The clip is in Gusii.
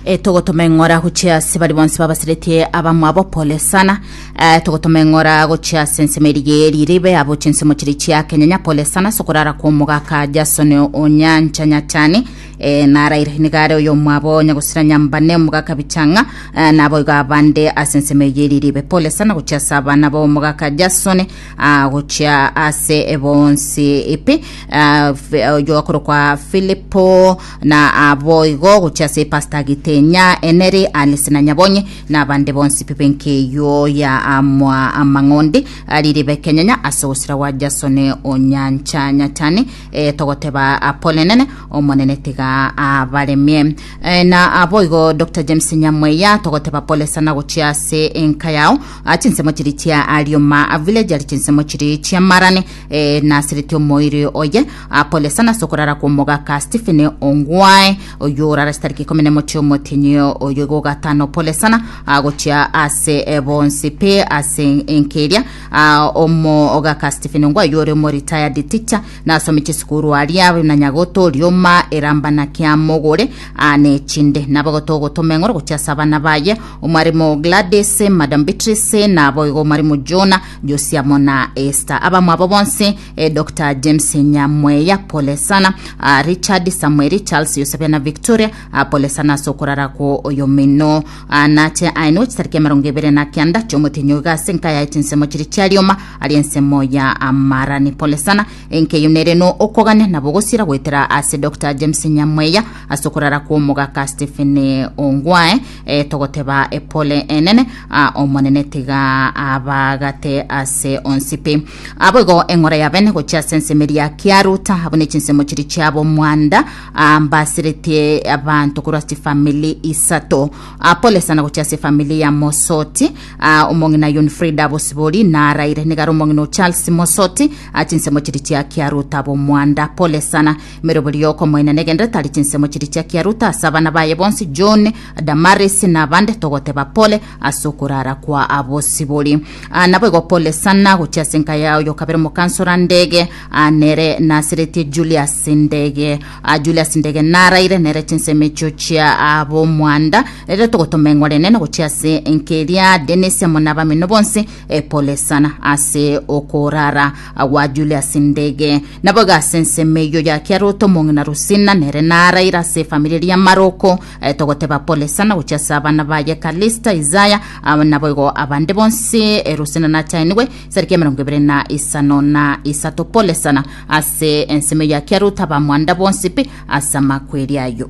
Eh, togotoma eng'ora gochia ase bari bonsi babasiretie abamwabo pole sana Eh, togotoma eng'ora gochia ase ensemo erige riribe abo chinsemo chiri chia kenyanya pole sana sokorara kwa omogaka jason onyancha nyachani Eh, naraire nigare oyo omwabo nyagosira nyambane omogaka bichang'a Eh, naboigo abande ase ensemo eye riribe pole sana gochia ase abana bo omogaka jason ah, gochia ase bonsi ipi Ah, Fi- oyo akorokwa filipo Na aboigo gochia ase epasta Gitenya, Eneri, Alice na Nyabonye, na abande bonsi pi b'enkeywo ya amwa amang'ondi ari ribe kenyanya ase ogosira gwa Jasoni o nyancha nyachani, eh, togoteba Apolenene, Omonene tiga abaremie. Eh, na aboigo Doctor James Nyamweya, togoteba pole sana gochia ase enka yao. Ah, chinsemo chiri chia Arioma Village ari chinsemo chiri chi'amarane, E, nasereti omoiri oye akolesa nase okorara kw'omogaka Stephen Ongwae oyo orara chitariki ikomi na mochie omotinyi oyo igo gatano polesana agochia ase e, bonsi pe ase enkeria a, omogaka Stephen Ongwae oyo ore omoritayadi ticha nasome chisukuru aria na nyagoto rioma erambana kia mogore ane chinde nabagoto ogotoma eng'oro gochia ase abana baye omwarimu Gladys Madam Beatrice nabo igo omwarimu Jonah Josiamo na Esther abamwabo bonse eh, Dr James Nyamweya pole sana ah, Richard Samueli Charles Yosebia na Victoria ah, pole sana ase okorara ko oyo mino ah, nache aenwe chitariki emerongo ebere na kianda chiomotinyo iga ase enka yaye chinsemo chiri chiarioma ari ensemo ya amarani pole sana enkeyo nere no okogania nabo gosira goetera ase Dr James Nyamweya ase okorara kwa omogaka Stephen Ongwae E, togoteba e, pole enene a, omonene tiga abagate ase onsi pi aboigo eng'ora ya bene gochia ase enseme ria kiaruta abo ne chinsemo chiri chiabo mwanda a, mbasiretie abanto korwa ase chifamili isato a, pole sana gochia ase efamili ya mosoti a, omong'ina yon frida bosibori naraire nigare omong'ina o charles mosoti a, chinsemo chiri chia kiaruta abo mwanda pole sana Merobori y'okomoina negende tari chinsemo chiri chia kiaruta ase abana baye bonsi John, Damaris na abande togoteba pole ase okorara kwa abosibori. Ah, naboigo pole sana gochia ase enka ya oyo kabere omokansora ndege ah, nere naseretie Julius ndege ah, Julius ndege naraire nere chinsemo echio chia ah, bomwanda rero togotoma eng'ore enene gochia ase enka eria Dennis amo na abamino bonsi eh, pole sana ase okorara Agwo ajure ase endege, na boigo ase ensemo eyio ya Kiarote omong'ina Rusina, nere naraire ase efamiri eria ya Maroko, eh, togoteba Polesa, na gochia ase abana baye Kalista, Isaya, ah, na boigo abande bonsi, eh, Rusina nachainigwe sariki emerongo ebere na isano na isato Polesa, na ase ensemo eyio ya Kiarote abamwanda bonsi pi ase amakweri ayio.